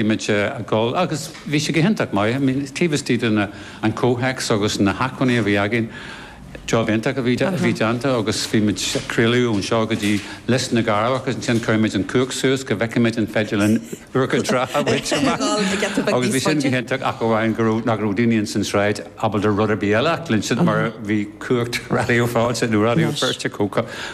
bhí muid ag dul agus bhí sé go hiontach maith. I mean taobh istigh de na, an comhthéacs agus na hacmhainní a bhí againn, job iontach a bhí, a bhí déanta agus bhí muid ag craoladh ón seo go dtí Lios na gCearrbhach agus ansin chuir muid an chumhacht suas go bhfeicfeadh muid an féidir linn Iúr Cinn Trá a bhaint amach agus bhí sin go hiontach ach amháin go raibh, nach raibh daoine ins an tsráid ábalta rud ar bith eile a chluinstin mar bhí cumhacht Raidió Fáilte nó Raidió Feirste chomh,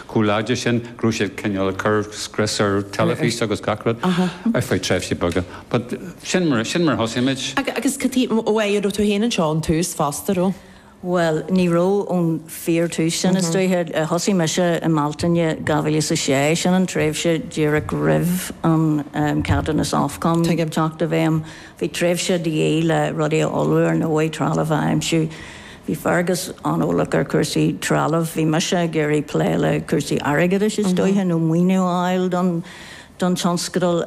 chomh láidir sin. go raibh siad cineál ag cur scrios ar teilifís agus gach rud ar feadh tréimhsí beaga. But sin mar, sin mar a thosaigh muid. Agus cad é, ó an raibh tú féin anseo ón tús fosta, raibh? Bhuel, ní raibh ón fíor tús, sin is dóiche. Thosaigh mise i mBealtaine 2006, sin an tréimhse díreach roimh an ceadúnas Ofcom teacht i bhfeidhm. Bhí tréimhse de dhíth le rudaí a ullmhú ar ndóigh, trealamh a aimsiú, Bhí Fergus an-eolach ar chúrsaí trealaimh. Bhí mise ag iarraidh plé le cúrsaí airgeadais is dóiche, nó maoiniú a fháil don tionscadal.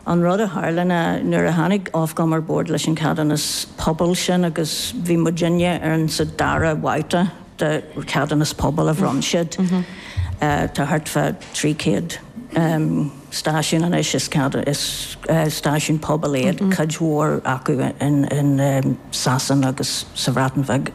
An rud a tharla ná nuair a tháinig Ofcom ar bord leis an cheadúnas pobail sin agus bhí muidinne ar an, sa dara bhabhta de cheadúnas pobail a bhronn siad, tá thart fá 300. stáisiún anois is ceadú. Is stáisiún pobail iad, cuid mhór acu in Sasana agus sa Bhreatain ar fad.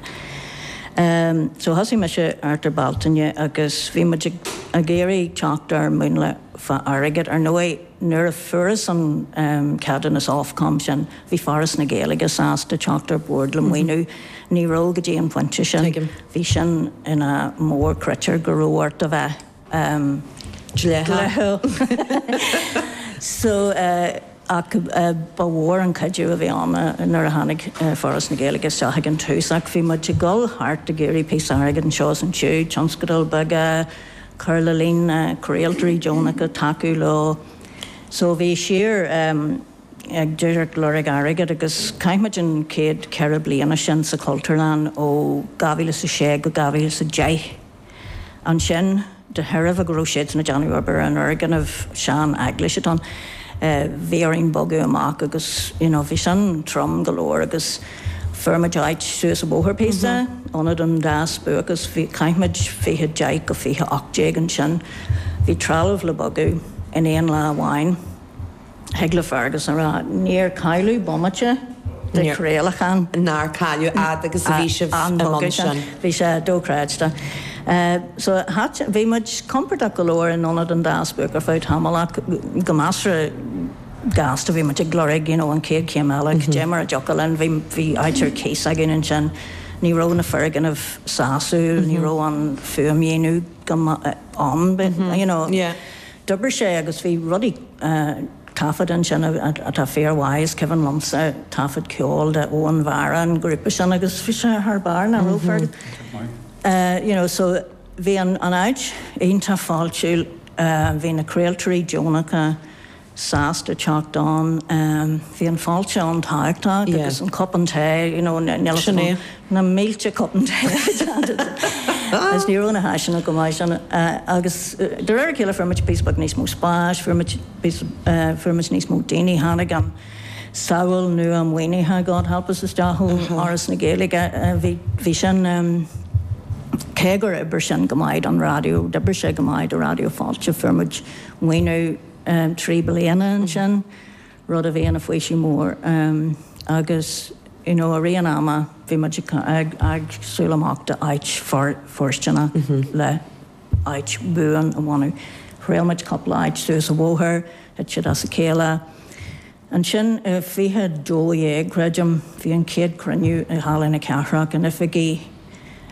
So thosaigh mise thart ar Bealtaine agus bhí muid ag iarraidh teacht ar mhúnla fá airgead. Ar ndóigh nuair a fuarthas an ceadúnas Ofcom sin bhí Foras na Gaeilge sásta teacht ar bord le maoiniú. Ní raibh go dtí an pointe sin. Bhí sin ina mhórchritéar go raibh ort a bheith. um dleathach so ach ba mhór an cuidiú a bhí ann nuair a tháinig Foras na Gaeilge isteach ag an tús ach bhí muid ag dul thart ag iarraidh píosa airgid anseo is ansiúd, tionscadail bheaga, cur le líon na gcraoltóirí deonacha, tacú leo so bhí síor um ag díreach lorg airgid agus chaith muid an chéad ceithre bliana sin sa Chultúrlann ó 2006 go 2010. Ansin, de thairbhe go raibh siad ag déanamh obair ar an fhoirgneamh, seaneaglais atá ann, bhí orainn bogadh amach agus you know bhí sin trom go leor agus fuair muid áit suas an bóthar píosa, Ionad an Dá Spuaic agus, bhí, chaith muid fiche deich go fiche ocht déag ansin. Bhí trealamh le bogadh in aon lá amháin. Thig le Fergus a rá, níor cailleadh bomaite de chraolachán. Nár cailleadh fhad agus a bhí sibh i mbun sin? Bhí sé dochreidte. So ach, bhí muid compordach go leor in Ionad an Dá Spuaic ar feadh tamaill ach go measartha gasta, bhí muid ag lorg you know an chéad chéim eile, caidé mar a thiocfadh linn, bhí, bhí áit ar cíos againn ansin. Ní raibh na foirgnimh sásúil, ní raibh an fuaimdhíonadh go maith ann but, you know, D'oibrigh sé agus bhí rudaí taifeadta ansin atá fíormhaith, is cuimhin liomsa taifead ceoil de Anúna Mhara an grúpa sin agus bhí sé thar barr nach raibh Fergus? You know so bhí an áit iontach fáiltiúil, bhí na craoltóirí deonacha sásta teacht ann, bhí an fáilte an tábhachtach agus an cupán tae you know, níl a fhios agam. na mílte cupán tae agus ní raibh na háiseanna go maith ansin agus de réir a chéile fuair muid píosa beag níos mó spáis, fuair muid píosa, fuair muid níos mó daoine, tháinig an samhail nua maoinithe God Help Us isteach ó Fhoras na Gaeilge, bhí, bhí sin, cé gur oibrigh sin go maith don raidió, d'oibrigh sé go maith do Raidió Fáilte, fuair muid maoiniú trí bliana ansin. rud a bhí ina faoiseamh mór agus you know i rith an ama bhí muid ag siúl amach do áit fóirsteanach le áit buan a bhunú. Thriail muid cúpla áit suas an bóthar, thit siad as a chéile. Ansin i 2012 creidim bhí an chéad cruinniú i Halla na Cathrach in oifigí,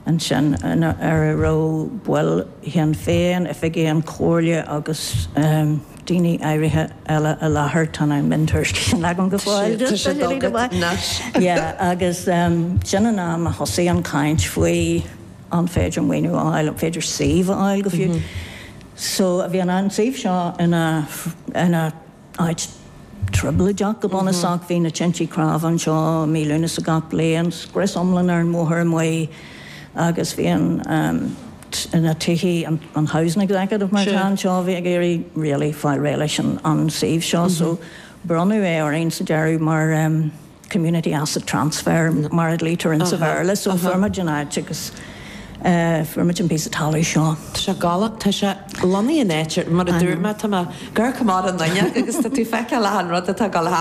ansin a raibh baill Shinn Féin, oifigigh ón Chomhairle agus daoine áirithe eile i láthair. Tá na miontuairiscí sin agam go fóill. Tá siad agat anois. Agus sin an am a thosaigh an chaint faoi an féidir maoiniú a fháil, an féidir suíomh a fháil go fiú. So bhí an suíomh seo ina. Áit trioblóideach go bunúsach, bhí na tintí cnámha anseo mí Lúnasa gach bliain, scrios iomlán ar an mbóthar amuigh agus bhí an na tithe, an housing executive mar atá anseo, bhí ag iarraidh really fáil réidh leis an suíomh seo so bronnadh é orainn sa deireadh mar, community asset transfer mar a ghlaotar in sa Bhéarla. So fuair muid an áit agus fuair muid an píosa talaimh seo. Tá sé galánta, tá sé lonnaithe in áit, mar a dúirt mé, tá mé os comhair na fuinneoige agus tá tú ag feiceáil achan rud atá ag dul thart.